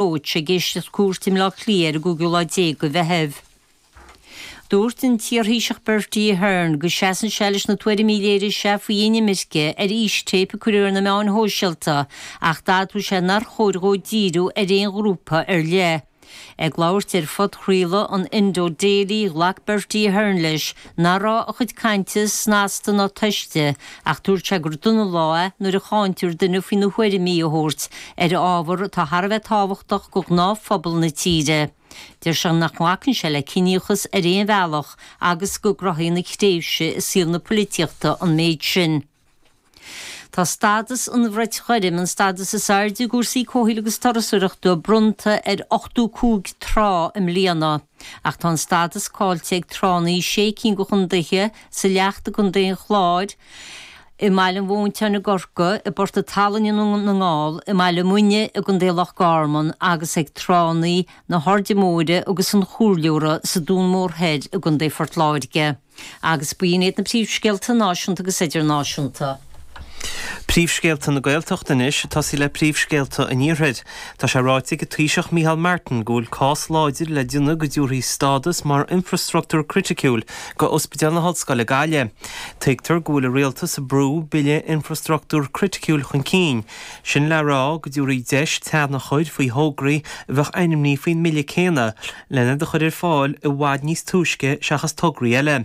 Roche ag éisteacht cúirt i mBleá Cliath ar an gcúigiú lá déag de Mheitheamh. Dúirt an t-iarThaoiseach Bertie Ahern go seasann sé leis na tuairimí a léirigh sé faoi inimirce ar fhístéip a cuireadh ar na meáin shóisialta ach d'admhaigh sé nár chóir dhó díriú ar aon ghrúpa ar leith. Ag labhairt ar phodchraoladh an Indo Daily, ghlac Bertie Ahern leis, Ná raibh a chuid cainte snasta ná tomhaiste ach dúirt sé gur dona an lá é nuair a cháintear duine faoina thuairimí a thabhairt ar ábhar atá thar a bheith tábhachtach do ghnáthphobal na tíre. Deir sé nach nglacann sé le ciníochas ar aon bhealach agus go gcruthaíonn a thréimhse i saol na poilitíochta an méid sin. Tá stádas an Bhrait Ghoirm, an stádas is airde i gcúrsaí comhshaoil agus turasóireachta, bronnta ar 85 trá i mbliana. Ach tá an stádas caillte ag tránna i sé cinn de chondaetha, sa Leacht i gContae an Chláir, i mBaile Mhontáin i gCorcaigh, i bPort an tSalainn na nGall, i mBaile Muine i gContae Loch Garman agus ag tránna na hAirde Móire agus an Chomhairleora sa Dún Mór Thoir i gContae Phort Láirge. Agus b'in iad na príomhscéalta náisiúnta agus idirnáisiúnta. Príomhscéalta na Gaeltachta anois ag tosaí le príomhscéalta an Iarthair. Tá sé ráite ag an Taoiseach Micheál Martin go bhfuil cás láidir le déanamh go dtabharfaí stádas mar infreastruchtúr criticiúil do Ospidéal na hOllscoile Gaillimh. Tuigtear go bhfuil an Rialtas ag brú Bille Infreastruchtúr Criticiúil chun cinn, sin le rá go dtabharfaí deis teannadh a chur faoi thograí a bheadh ainmnithe faoin mbille céanna. len iad a chur ar fáil i bhfad níos túisce seachas tograí eile.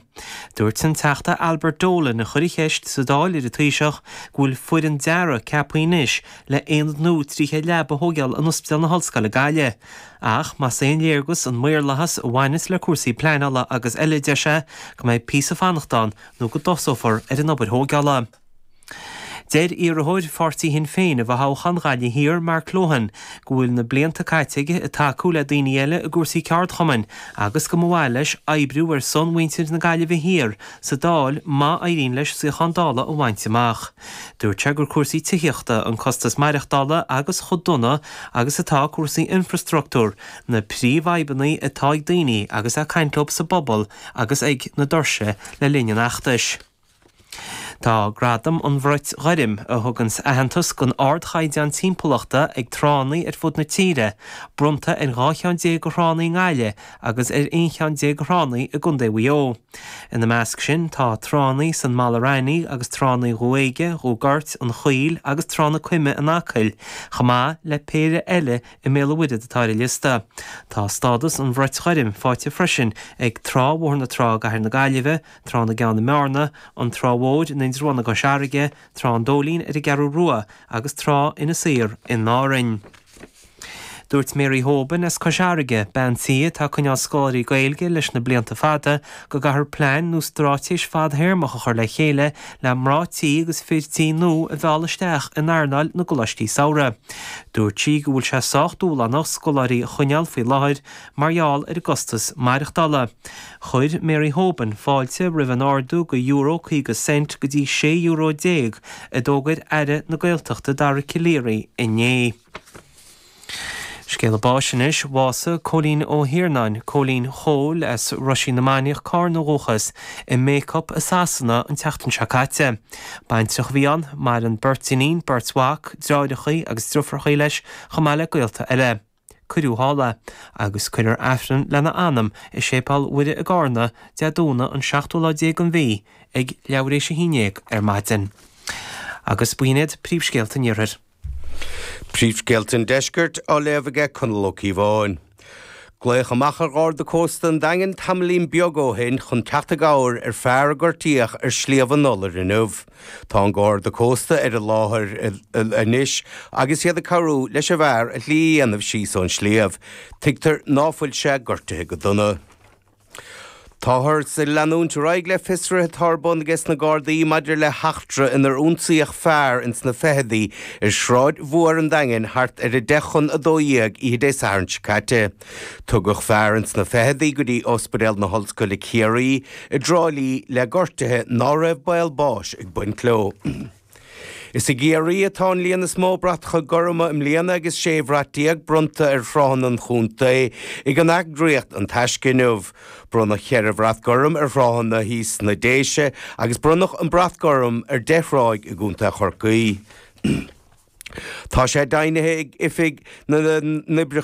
Dúirt an Teachta Albert Dolan, a chuir an cheist sa Dáil ar an Taoiseach, go bhfuil foireann dearaidh ceaptha anois le aonad nua 300 leaba a thóigeáil in Ospidéal na hOllscoile Gaillimh. Ach más aon léargas an maorlathas a bhaineas le cúrsaí pleanála agus eile deir sé go mbeidh píosa fanacht ann nó go dtosófar ar an obair thóigeála. Deir iarrthóir Pháirtí Shinn Féin i bhfothoghchán Ghaillimh Thiar, Mark Lohan, go bhfuil na blianta caite aige ag tacú le daoine eile i gcúrsaí ceardchumainn agus go mba mhaith leis oibriú ar son mhuintir na Gaillimhe Thiar sa Dáil má éiríonn leis suíochán Dála a bhaint amach. Dúirt sé gur cúrsaí tithíochta, an costas maireachtála agus chomh dona agus atá cúrsaí infreastruchtúir, na príomhfhadhbanna atá ag daoine agus é ag caint leo sa bpobal agus ag na doirse le linn an fheachtais. Tá Gradam an Bhrait Ghoirm, a thuganns aitheantas don ardchaighdeán timpeallachta ag tránna ar fud na tíre, bronnta ar dhá cheann déag de thránna i nGaillimh agus ar aon cheann déag de thránna i gContae Mhaigh Eo. Ina measc sin tá tránna san Mala Raithní agus tránna Dhumha Éige, Dhumha Goirt, an Chaoil agus Trá na Coime in Acaill, chomh maith le péire eile i mBéal an Mhuirthead atá ar an liosta. Tá stádas an Bhrait Ghoirm faighte freisin ag Trá Bhóthar na Trá i gCathair na Gaillimhe, Trá na gCeann i mBearna, An Trá Mhór in Indreabhán i gCois Fharraige, Trá an Dóilín ar an gCeathrú Rua agus Trá Inis Oírr in Árainn. Dúirt Mary Hoban as Cois Fharraige, bean tí atá ag coinneáil scoláirí Gaeilge leis na blianta fada, go gcaithfear plean nó straitéis fadtéarmach a chur le chéile le mná tí agus fir tí nua a mhealladh isteach in earnáil na gcoláistí samhraidh. Dúirt sí go bhfuil sé sách dúshlánach scoláirí a choinneáil faoi láthair Mar gheall ar an gcostas maireachtála, chuir Mary Hoban fáilte roimh an ardú de euro 50 cent go dtí 16 euro a d'fhógair Aire na Gaeltachta Dara Calleary inné. Scéala báis anois bhásaigh Cóilín Ó hIarnáin, Cóilín Chóil, as Roisín na Mainiach, Carna ó dhúchas, i mBacup i Sasana an tseachtain seo caite. Baintreach a bhí ann. Maireann beirt iníon, beirt mhac, dreáireachaí agus driofarachaí leis chomh maith le gaolta eile. Cuireadh thall é agus cuirfear Aifreann lena anam i Séipéal Mhuire i gCarna, Dé Domhnaigh an 7ú lá déag den mhí, ag leathréis a haon déag ar maidin. Agus b'in iad príomhscéalta an Iarthair. Príomhscéalta an Deiscirt á léamh aige Conall Ó Cíobháin. Glaodh amach ar gharda cósta an Daingin tamaillín beag ó shin chun teacht i gcabhair ar fear a gortaíodh ar Shliabh an Iolair inniu. Tá an Garda Cósta ar an láthair anois agus iad ag cabhrú leis an bhfear a shlí a dhéanamh síos ón sliabh. Tuigtear ná fuil sé gortaithe go dona. Táthars ag leanúint ar aghaidh le fiosruithe atá ar bun aige sna Gardaí maidir le heachtra inar ionsaíodh fear ins na fichidí ar Shráid Mhuar an Daingin thart ar a deich chun a dó dhéag oíche Dé Sathairn seo caite. Tugadh fear ins na fichidí go dtí Ospidéal na hOllscoile Ciarraí i dTrá Lí le gortuithe ná raibh baol báis ag baint leo. Is i gCiarraí atá an líon is mó bratacha gorma i mbliana agus 16 bhrat bronnta ar thráthanna an chontae ag an eagraíocht An Taisce inniu. Bronnadh 4 bhrat gorm ar thráthanna thíos sna Déise agus bronnadh an brat gorm ar 10 thráigh i gcontae Chorcaí. Tá sé deimhnithe ag Oifig na nOibreacha.